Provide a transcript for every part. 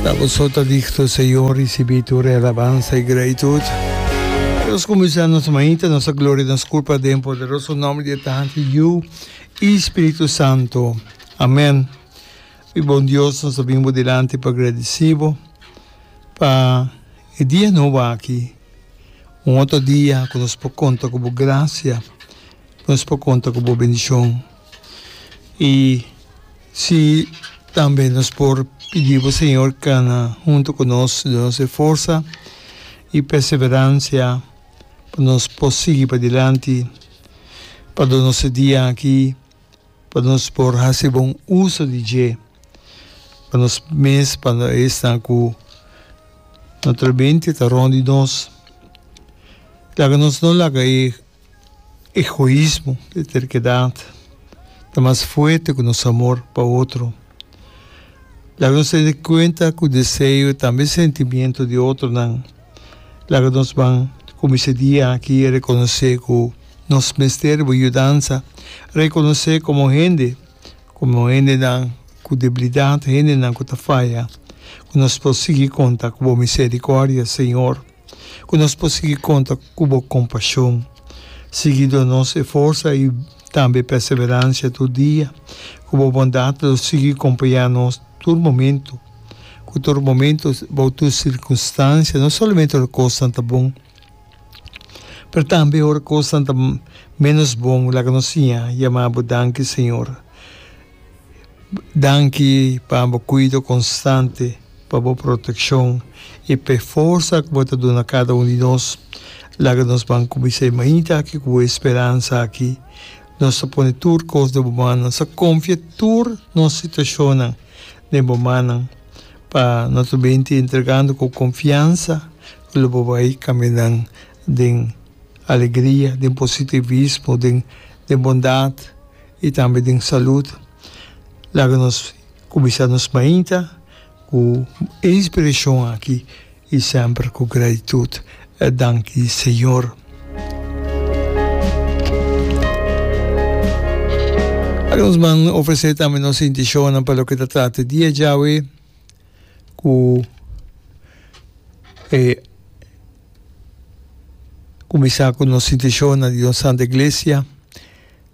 Ta bo so ta digto Señor Ricibi tur e alabansa y gratitud Nos cuminsa nos mañita Nos a gloria nos culpa Den poderoso nomber di e Tata Yu y Spiritu Santo Amen Mi bon Dios nos a bini bo dilanti pa gradici bo pa e dia nobo aki Un otro dia cu nos por conta cu bo gracia Nos por conta cu bo bendicion. y si tambe nos por pidi bo Señor cana hunto cu nos, donos e forsa y perseverancia pa nos por sigui padilanti, pa donos e dia aki, pa nos por haci bon uso di dje, pa nos mes pa no esnan cu notre mente ta rond di nos, laga nos no laga e. Egoismo, e terkedat, ta mas fuerte ku nos amor pa otro. Laga nos tene kuenta ku deseo i tambe sentimiento di otronan. Laga nos ban kuminsa e dia aki rekonosé ku nos mester bo yudansa, rekonosé komo hende, komo hendenan ku debilidat, hendenan ku ta faya, ku nos por sigui konta ku bo miserikòrdia, Señor. Ku nos por sigui konta ku bo kompashon, sigui do nos e forsa i tambe e perseveransia tur dia. Ku bo bondat lo sigui kompañá nos tur momentu. Ku tur momentu, bou tur sirkunstansia, no solamente ora kosnan ta bon, pero tambe ora kosnan ta ménos bon, laga nos siña yamá bo danki, Señor. Danki pa bo kuido konstante, pa bo protekshon i p'e forsa ku bo ta duna kada un di nos. Laga nos ban kumpi esei mainta aki ku bo e speransa aki. Nos ta pone tur kos den bo mannan. Sa konfia tur nos situashonnan den bo mannan pa no ta binti entregando ku konfiansa ku lo bo bai kaminan den alegria, den positivismo, den bondat. I tambe den salud, laga nos kuminsá nos mainta ku e inspirashon aki i semper ku gratitut e danki di Señor. Laga nos man ofresé tambe nos intishonnan pa loke ta trata di e djawe ku e kuminsá ku nos intishonnan di nos Santa Iglesia.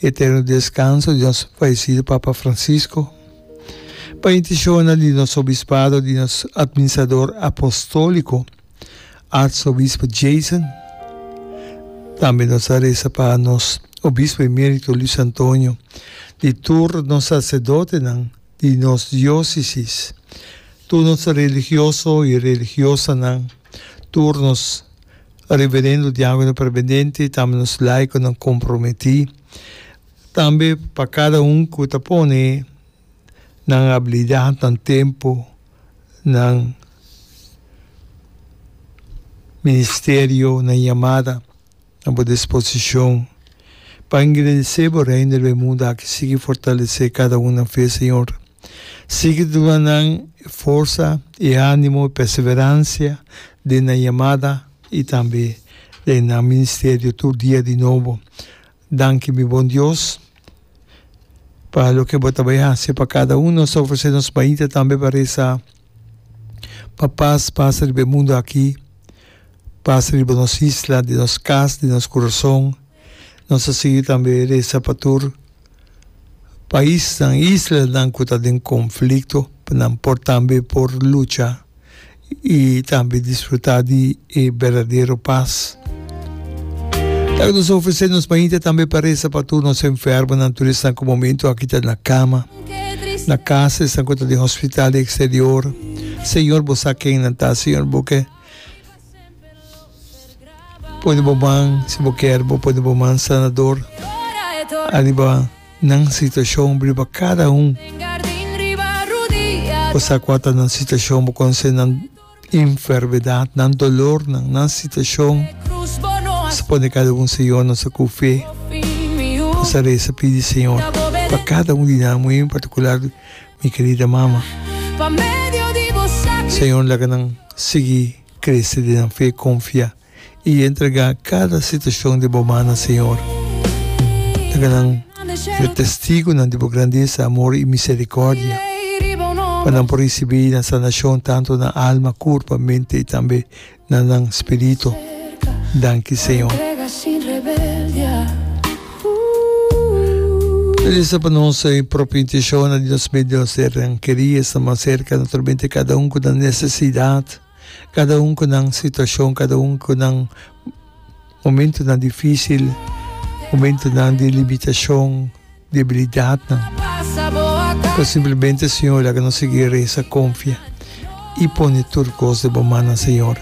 Eterno descanso di nos fallecido Papa Francisco, pa intencionnan di nos Obispado, di nos Administrador Apostolico Arzobispo Jason. Tambe nos ta reza pa nos Obispo Emerito Luis Antonio, di tur nos Sacerdotenan di nos Diocesis, tur nos Religioso y Religiosanan, tur nos. Reverendo Diakonan Perbendente tambe nos laikonan komprometí tambe pa kada un ku ta pone nan abilidat, nan tempu, nan ministerio, nan yamada na bo disposishon pa engrandesé bo Reino del Mundo aki sigui fortalesé kada un na fe Señor. Sigui duna nan forsa i animo i perseverancia den nan yamada i tambe den nan ministerio tur dia di nobo. Danki mi bon Dios pa loke bo ta bai haci pa cada uno. Nos ta ofrece nos baita tambe pa reza pa paz pasa riba e mundo aki, pasa riba nos isla, den nos cas, den nos corazon. Nos a sigui tambe resa pa tur paisnan, islanan cu ta den conflicto pa nan por tambe por lucha y tambe disfruta di e berdadero paz. Esaki nos a ofrece nos mainta tambe pa resa pa tur nos enfermonan, tur esnan cu momento aki ta na cama, na casa, esnan cu ta den hospital y exterior. Señor, Bo sa kennan ta, Señor, bo ke. Pudi bo ban, si bo kier, bo pudi bo man sanador ariba nan situashon, riba kada un. Bo sa kua ta nan situashon, bo konosé nan enfermedat, nan dolornan, nan situashon. Bo sa pone kada un Señor, nos a konfié. Nos a resa, pidi Señor pa kada un di nan, muy en particular. mi kerida mama. Señor laga nan sigui crece den nan fe, confia y entrega cada situacion den bo mannan Señor. Laga nan ser testigonan di bo grandeza, amor y misericordia pa nan por ricibi nan sanacion tanto na alma, curpa, mente y tambe na nan spirito. Danki Señor. No disa pa nos e propio intencion na di nos medio a ser keri, esta mas cerca naturalmente cada un cu nan necesidad, cada un cu nan situacion, cada un cu nan momentonan dificil, momentonan di limitacion. debilidatnan. Ta simplemente Señor laga nos sigui resa, confia y pone tur cos den bo mannan, Señor.